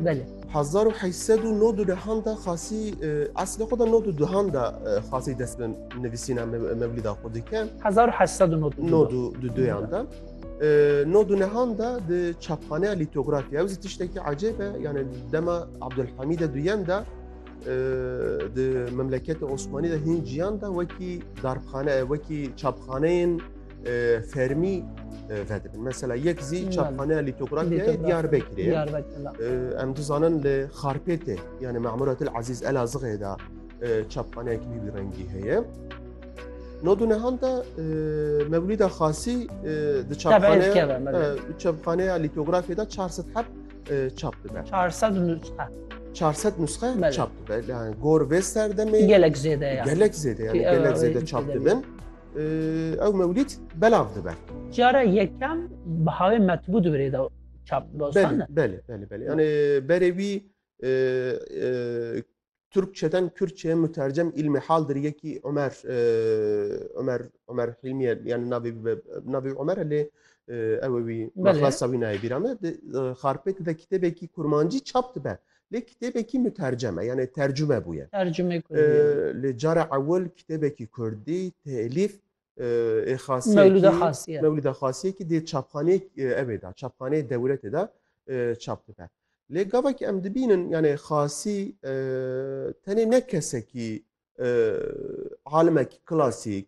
Belê. Hezar û heyş sed û nod û dehan de xasî eslê xwe de nod û duhan de xasî dest bi nivîsîna mevlîda xwe dike. Hezar û heyş sed û nod nod û du duyan de. Nod û nehan de di çapxaneya lîtografî ew zî tiştekî ecêb e yanê dema Abdulhamîde duyem de di memleketê Osmanî de hîn ciyan de wekî darxane wekî çapxaneyên fermî vedibin. Mesela yek zî çapxaneya lîtografyayê Diyarbekirê ye. Em dizanin li Xarpêtê yani Memuratil Ezîz Elazığê de çapxaneyekî wî wî rengî heye. Nodunehan de Mevlîda Xasî di çapxaneya lîtografyê de 400 heb çap dibe. 400 nusxe. 400 nusxe çap dibe. Yani gor vê serdemê gelek zêde gelek zêde yani gelek zêde çap dibin. Ew mewlîd belav dibe. Cara yekem bihawê metbû dibrê de çap dostan ne? Belê, belê, belê. Yani berê wî Türkçeden Kürtçeye mütercem ilmi haldir yekî Ömer Ömer Ömer Hilmiye yani navê navê Ömer lê ew wî mexlasa wî nayê bîra me xarpêt de kitêbekî kurmancî çap dibe. Lê kitêbekî mutercem e yanê tercume bûye. Tercume kurdî ye. Lê cara ewil kitêbekî kurdî telîf ê xasiyekî Mewlûda Xasiyekî dê çapxaneyê ew ê de çapxaneyê dewletê de çap dibe. Lê gavek em dibînin yanê xasî tenê ne kesekî alimekî klasîk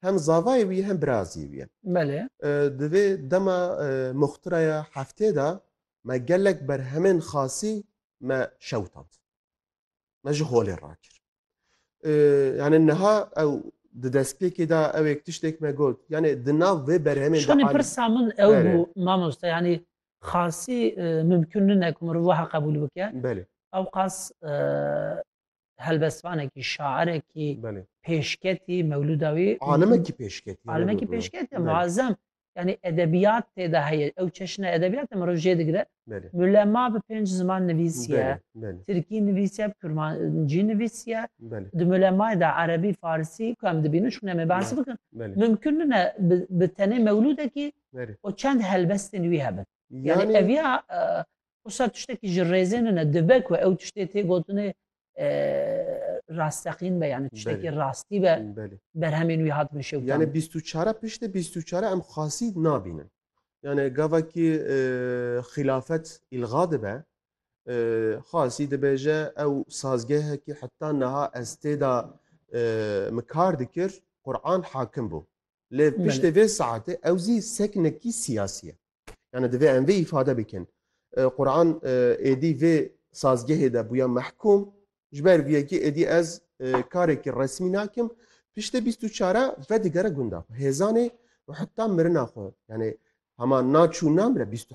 Hem zavayê wî ye hem birazê wî ye. Belê. Di vê dema muxtiraya heftê de me gelek berhemên xasî me şewitand. Me ji holê rakir. Yani niha ew di destpêkê de ewêk tiştêk me got. Yani di nav vê berhemê de Şonê pirsa min ew bû mamoste yani xasî mimkun nine ku mirov wiha qebûl bike. Belê. Ewqas helbestvanekî, şairekî, pêşketî, mewlûda wî alimekî pêşketî alimekî pêşketî muazzem yanî edebiyat tê de heye ew çeşne edebiyat em roj jê digire Mülema bi pênc ziman nivîsiye Tirkî nivîsiye Kurmancî nivîsiye di Mülemayê de Erebî Farsî ku em dibînin çûne me bahs bikin mimkun nine bi tenê mewlûdekî û çend helbestên wî hebin Yani ev ya wisa tiştekî ji rêzê nine dibe ku ew tiştê tê gotinê rasteqîn be yani tiştekî rastî be berhemên wî hatibin şew yani bîst û çare piştê bîst û çare em xasî nabînin yani gavekî xilafet îlga dibe xasî dibêje ew sazgehekî heta niha ez têda min kar dikir Qur'an hakim bû Lê piştê vê saetê ew zî seknekî siyasî ye. Yani divê em vê îfade bikin. Quran êdî vê sazgehê de bûya mehkûm ji ber vê yekê êdî ez karekî resmî nakim piştê bîst û çare vedigere gunda xwe. Hêzanê û heta mirina xwe yani hema naçû namire bîst û